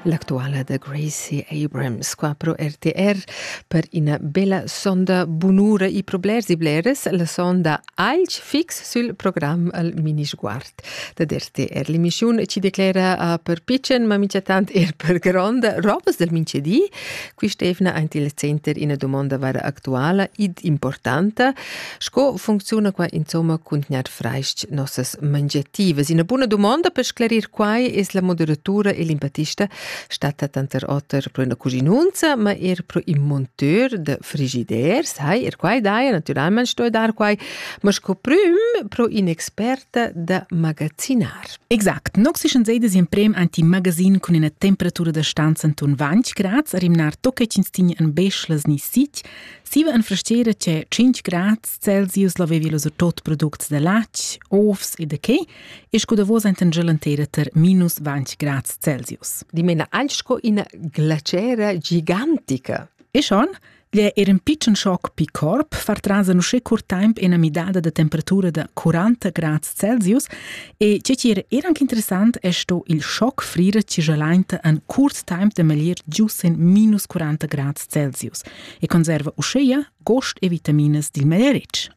L'actuala da Gracie Abrams qua pro RTR per ina bella sonda bunura e problers e bleres, la sonda alch fix sul program al mini-sguard da RTR. L'emissiun ci declera a per piccen, ma mica tant er per gronda robes del mincedi. Qui Stefna ant il center ina domanda vara actuala id importanta, Sco funcziuna qua insomma cuntgnat fraist nossas mangiativas? Ina buna dumonda per sclarir quai es la moderatura e l'empattista statta tanter oter pro üna cuginunza, ma eir pro ün monteur da frigiders. Hai, er quai daja, natüralmaing sto dar quai, ma sco prüm pro in'experta da magazzinar. Exact. Nox ischan seidas in prem ant in magazin cun üna temperatura da stanza intuon 20 grads, a rimnar tocca ch'ins tigna an beschlas ni sitg, Siva en frastera c'è 5 grad Celsius l'avevi los tot products da latg, ovs e da che, e sco da vos enten gelantera ter minus 20 grad Celsius. Dimena anche sco ina glacera gigantica. E schon? Gli era un piccon shock pi corp far tras a nusce cur temp ena midada da temperatura da 40 grad Celsius e ce ci era era anche interessant è sto il shock frire ci gelainta an curt temp de meglier giusen minus 40 grad Celsius. e conserva uscheia gost e vitaminas dil maleretg.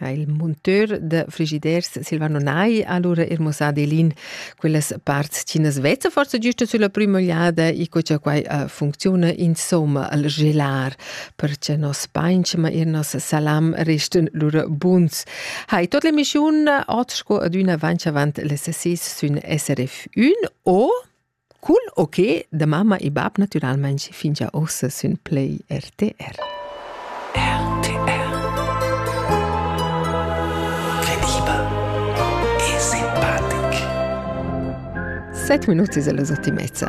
Il monteur de frigiders Silvano Nai ha allora ermosà Delin quellas parts che nas vezza forse giusto sulla prima ogliada e co che quai uh, funziona insomma al gelar perché nos painchma e nos salam resten lura buns. Hai tot l'emissiun oggi ad una avanti avant le 6 sün SRF 1 o Cul okay da mamma e bab natüralmaing fingià uossa sün Play RTR. RTR Crediba e simpatic 7 minuti es la ottimezza.